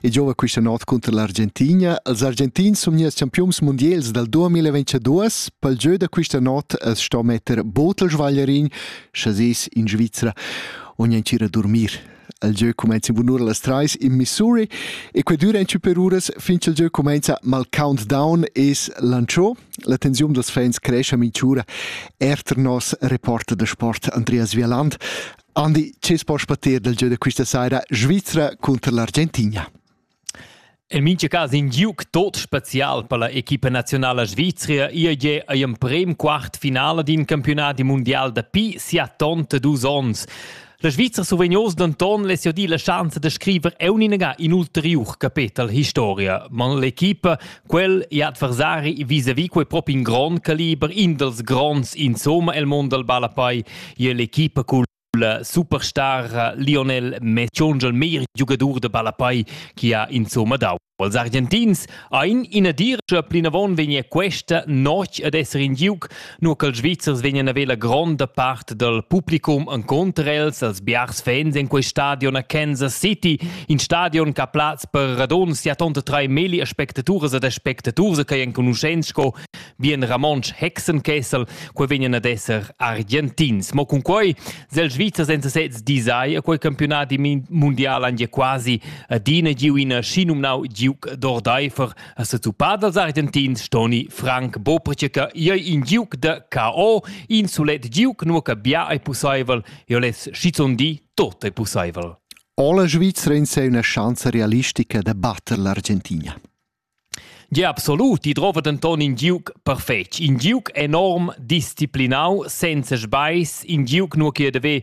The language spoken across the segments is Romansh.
e giova questa notte contro l'Argentina. Els argentins sono gli campions mondials dal 2022. Pel gieu da questa notte es sto metter botel svaglierin, chasais in Svizzera, ogni a dormir. Il gieu cumenza in bun'ora alle 3 in Missouri e quei dura en per uras fin che il gieu cumenza mal countdown e lanciò. La tensione dels fans cresce a Minciura. Erter nos reporter de sport Andreas Vialand Andi, tschess poss patir dal gieu da quista saira Svizra cunter l'Argentina? En mincha cas in giuc tot spezial per la equipa nazionala svizra IEG ei emprem quart finala d'in campionat mundial dapi siatonta dus onns. La Svizra suvegnos denton less di la schanza da scriver euninaga in ulteriur capetel historia, man l'equipa Quel è adversari vis-à-vis quei propi in grond caliber, in dels gronds insomma el mond dal ballapei, è l'equipa cul superstar Lionel Messi, un meglier giugadur de ballapei che ha insomma dau. Als Argentins ein ina dirscha plinavon vegnia questa notg ad esser in giug Nur ch'els Svizzers vegnan a la gronda part dal publicum encunter els als biars fans en quei stadion a Kansas City, in stadion ch'ha plaz per radund sia tonta trai milli aspectaturas ed aspectaturs che enconuschents sco bien Ramonsch Hexenkessel, quei vegnan ad esser argentins. Mo cun quei sel Svizzers en sesez disai a quei campionat mundial han ja quasi adina giu ina schinumnau Duke d'Ordeifer, A setuppà dals Argentins stoni Frank Bopricek iei in giuc da KO, in sulet giuc nu che bia ei pusseivel, io les schizun di tot ei pusseivel. Alle Schweizerin sei una chance realistica da batter l'Argentina. Ja, absolut, die drova denton in giuc perfetg, in giuc enorm disciplinau, senza sbais, in giuc nur che deve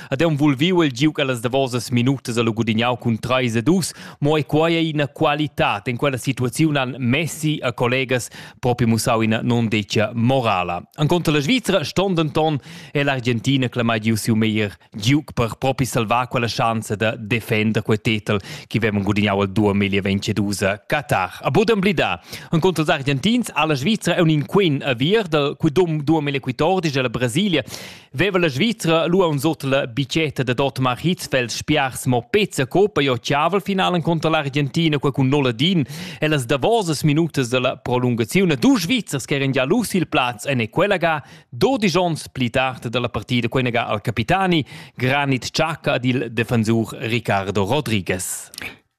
Ad eum vul viu el giu quellas davosas minutas a gudignau cun 3 a 2, mo e quai ei ina qualità. In quella situaziun han Messi a collegas propi mussau ina non decia morala. An contra la Svizzera ston denton e l'Argentina clamai giu siu meglier giuc per propi salvar quella chance da defender quel titel che vem gudignau al 2022 Qatar. A budem blida. An contra els argentins alla Svizzera è un inquin a vir dal quidum 2014 della Brasilia Veva la Svizra lu uns ot la bicetta da Otmar Hitzfeld spiars mo pezza coppa jo chaval finalen contro l'Argentina qua cun Noladin e las davosas minutas della prolungazione du Svizzers che eran già lus il plaz en e quella ga 12 ons pli tard della partida quella ga al capitani Granit Xhaka ed il defensur Ricardo Rodriguez.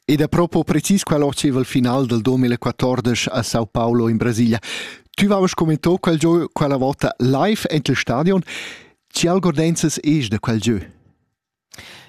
Ed a propo precis quel oceval final del 2014 a Sao Paulo in Brasilia. Tu vavas commento quel gio quella volta live en il stadion. Ci algordenzas eis da quel gio?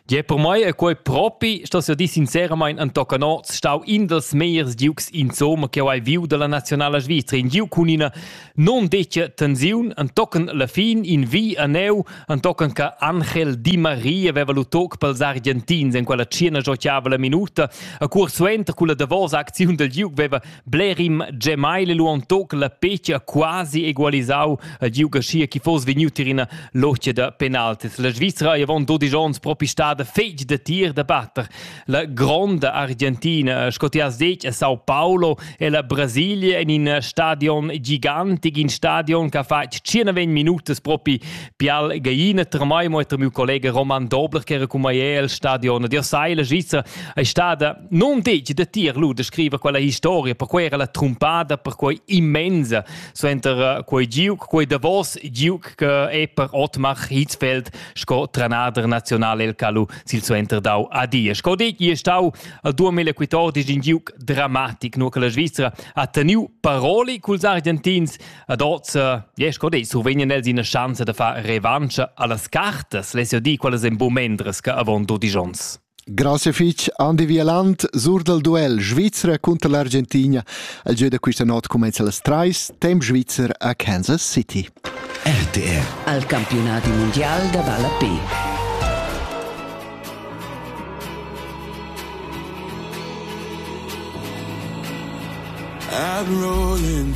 Ja, per mai è quel propi, sto io di sinceramente an Tocanot, stau in dels meiers giugs insomma che ho hai viu dalla nazionala Svizzera, in giu con una Non detg tensiun entochen la fin in vi a neu entochen che Angel Di Maria aveva lu toc pels Argentins en quella cena giochiava la minuta a cur suenter culla davosa acziun del Duke veva Blerim Gemaile lu on toc la pecha quasi egualisau al Duke schia chi foss vegnut in ina locia da penaltis la Svizzera avon 12 ons propi stada fetg de tir da batter La gronda Argentina, sco ti has detg, è Sao Paulo e la Brasilia en in stadion gigantic, in stadion che ha fatg 19 minutas propi pial gaina tremai mo tra mio collega Roman Dobler che era cun mai al stadion. Dir sai, la Svizra è stata non detg da tier lu da scrivere quella historia, per quei era la trumpada, per quei immensa, so enter eh, quei giug, quei davos giug che è per Otmar Hitzfeld sco trenader nazional el calu sil suenter dau a die. Sco detg, è stau 2014 in giug dramatic, nur che la Svizzera ha teniu paroli culs Argentins ad oz, e sco detg, survegnen els ina chance da far revancha allas cartas, lesio di qualas en momendres che avon 12 ons. Grazie fich Andi Wieland sur dal duel Svizra cunter l'Argentina. El gieu da questa not cumenza las trais, temp svizzer a Kansas City. RTR al campionati mondial da balla P. I'm rolling